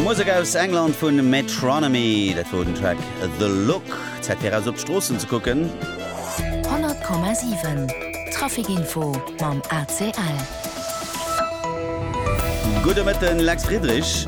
Musek aus England vun Metronomy, dat wor den Track The Look. Zäit fir eraus op d'Stroossen ze kucken. 100,7 Traficinfo mam ACL. Gudde Mëtten, Lex Friedrich.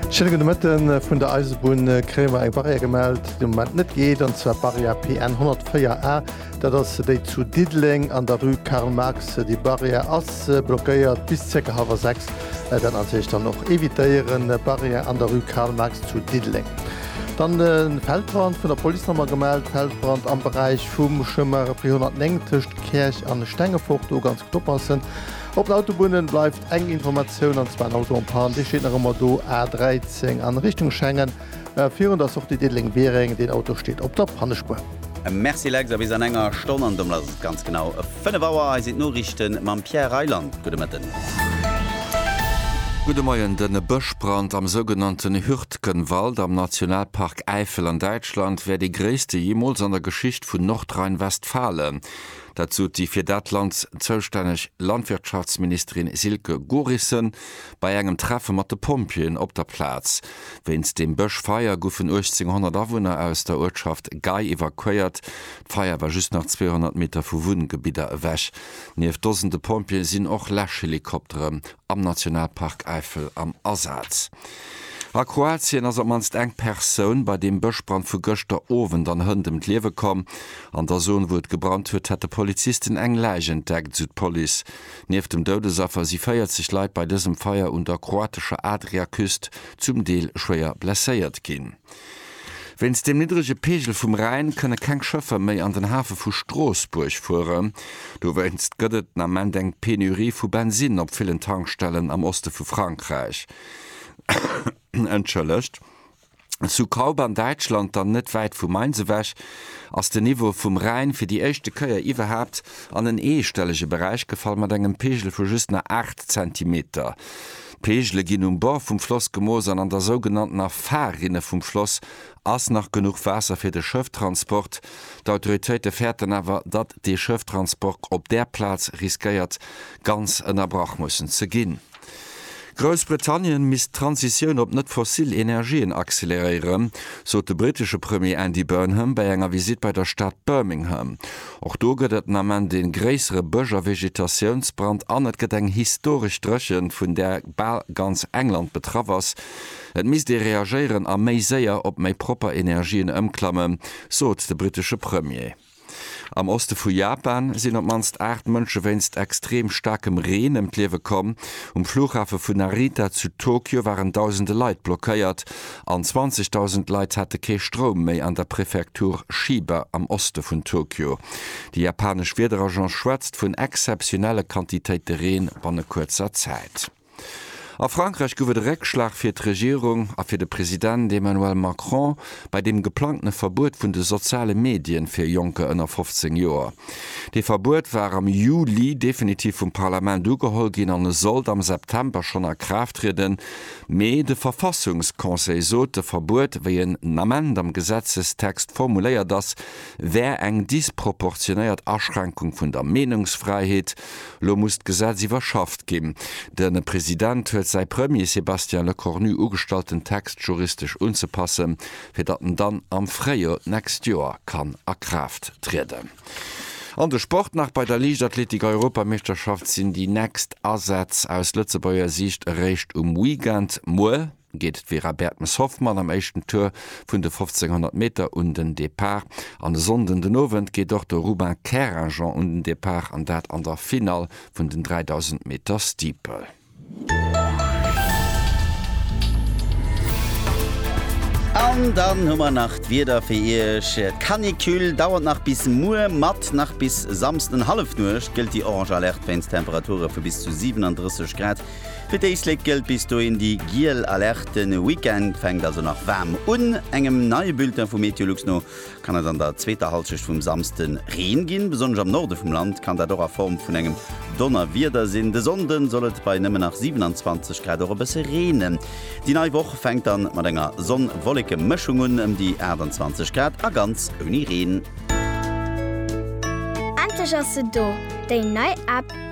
Schéine gudde Mëtten. Vun der Eisebunn kréie mer eng Barrière gemellt, déi de Moment net geet, an zwar d'Barrière PN 104 A. Dat ass déi zu Diddeleng an der Rue Karl Marx. Déi Barrière ass blockéiert bis zirka hallwer sechs. Dat natierlech dann och evitéieren. Barrière an der Rue Karl Marx zu Diddeleng. Dann de Feldbrand, vun der Police nach emol gemellt. Feldbrand am Beräich vum Chemin Repris 109 tëscht Käerch an Stengefort. Do ganz gutt oppassen. Op den Autobunne bleift eng Informatioun, an zwar en Auto en panne. Dee steet nach ëmmer do, A 13 an Richtung Schengen. Virun der Sortie Diddeleng-Biereng, deen Auto steet op der Pannespuer. Merci Lex, a bis an enger Stonn, an domat ass et ganz genau 5 Auer. Hei sinn d'Noriichte mam Pierre Reyland. Gudde Mëtten. Gudde Moien. De Bëschbrand am sougenannten Hürtgenwald am Nationalpark Äifel an Däitschland wär dee gréisste jeemools an der Geschicht vun Nordrhein-Westfalen. Dat sot déi fir dat Land zoustänneg Landwirtschaftsministerin Silke Gorissen. Bei engem Treffe mat de Pompjeeën op der Plaz wéinst dem Bëschfeier goufen 1800 Awunner aus der Uertschaft Gei evakuéiert. D'Feier war just nach 200 Meter vu Wunngebidder ewech. Nieft Dosende Pompjeeë sinn och Läschhelikoptere am Nationalpark Äifel am Asaz. A Kroatien ass op d'mannst eng Persoun bei deem Bëschbrand vu gëschter Owend an Hënt ëm d'Liewe komm. An der Zon, wou et gebrannt huet, hätte Polizisten eng Läich entdeckt, esou d'Police. Nieft dem Doudesaffer si 40 Leit bei dësem Feier un der kroatescher Adriaküst zum Deel schwéier blesséiert ginn. Wéinst dem niddrege Peegel vum Rhäin kënne keng Schëffer méi an den Hafe vu Stroossbuerg fueren. Dowéinst gëtt et den Ament eng Penurie vu Bensinn op villen Tankstellen am Oste vu Frankräich. Zu Kaub an Däitschland, dann net wäit vu Mainz ewech, ass den Niveau vum Rhäin fir déi éischte Kéier iwwerhaapt an en eestellege Beräich gefall, mat engem Pegel vu just nach 8 Zentimeter. D'Pegele ginn um Bord vum Floss gemooss an an der sougenanntener Fahrrinne vum Floss ass nach genuch Waasser fir de Schëfftransport. D'Autoritéite fäerten awer, datt de Schëfftransport op där Plaz riskéiert ganz ënnerbrach mussen ze ginn. Groussbritannien misst d'Transitioun op net fossil Energien acceleréieren, sot de brittesche Premier Andy Burnham bei enger Visitt bei der Stad Birmingham. Och do gëtt et den Ament ee gréissere Bësch a Vegetatiounsbrand an et gëtt eng historesch Dréchent, vun där bal ganz England betraff ass. Et misst ee reagéieren a méi séier op méi propper Energien ëmklammen, sot de brittesche Premier. Am Oste vu Japan sinn op d'mannst 8 Mënsche wéinst extreem staarkem Reen ëm d'Liewe komm. Um Flughafe vun Narita zu Tokio waren dausende Leit blockéiert an 20.000 Leit hate kee Stroum méi an der Prefektur Chiba am Oste vun Tokio. Déi japanesch Wiederagence schwätzt vun exzeptionelle Quantitéite Reen banne kuerzer Zäit. A Frankräich gouf et e Réckschlag fir d'Regierung a fir de President Emmanuel Macron bei deem geplangtene Verbuet vun de soziale Medien fir Jonker ënner 15 Joer. Dee Verbuet war am Juli definitiv vum Parlament ugeholl ginn an e sollt am September schonn a Kraaft trieden, mee de Verfassungsconseil sot, de Verbuet, wéi en Ament am Gesetzestext formuléiert ass, wär eng disproportionéiert Aschränkung vun der Meenungsfräiheet Elo muss d'Gesetz iwwerschafft ginn. De President huet säi Premier Sébastien Lecornu ugestallt den Text juristesch unzepassen, fir datt en dann am Fréijoer d'nächst Joer kann a Kraaft trieden. An de Sport nach, Bei der Liichtathletik-Europameeschterschaft sinn déi nächst Asätz aus Lëtzebuerger Siicht eréischt um Weekend. Muer. geet d'Vera Bertmes-Hoffmann am éischten Tour vun de 1500 Meter un den Depart an e Sonnden den Owend geet och de Ruben Keragen un den Depart an dat an der Finall vun den 3000 Meter Steeple. An dann hu mer nach d'Wieder fir Iech. D'Canicule dauert nach bis muer mat. Nach bis Samsden Hallefnuecht gëllt déi orange Alerte wéinst Temperature vu bis zu 37 Grad. Fir d'Éislek gëllt bis dohin déi giel Alerte. E Weekend fänkt also nach waarm un. Engem neie Bulletin vu Meteolux no kann et an der zweeter Hallschecht vum Samsde Reen ginn. Besonnesch am Norde vum Land kann dat och a Form vun engem Donnerwieder sinn. De Sonnde soll et bei nëmmen nach 27 Grad och e bësse reenen. Déi nei Woch fänkt dann mat enger Sonn-Wolleke-Mëschung un, ëm déi 28 Grad a ganz ouni Reen. Endlech ass se do, déi nei App!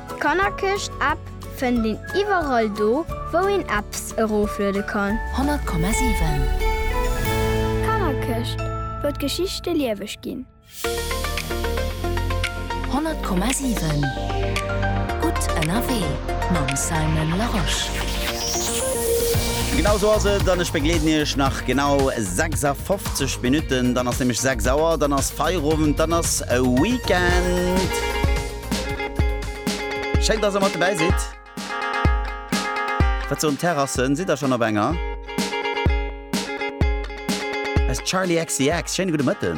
D'Kannerkëscht App fënnt een iwwerall do wou een Apps erofluede kann. 100,7 Kannerkëscht, wou d'Geschichte lieweg ginn. 100,7 Gutt ënnerwee mam Simon Larosche. Genau esou ass et, an ech begleeden Iech nach genau 56 Minutten. Dann ass nämlech 6 Auer, dann ass Feierowend, dann ass Weekend. Schéin, dass der mat dobäi sidd. Wat soen d'Terrassen? Sidd der schonn op enger? As Charli XCX, schéine gudde Mëtten.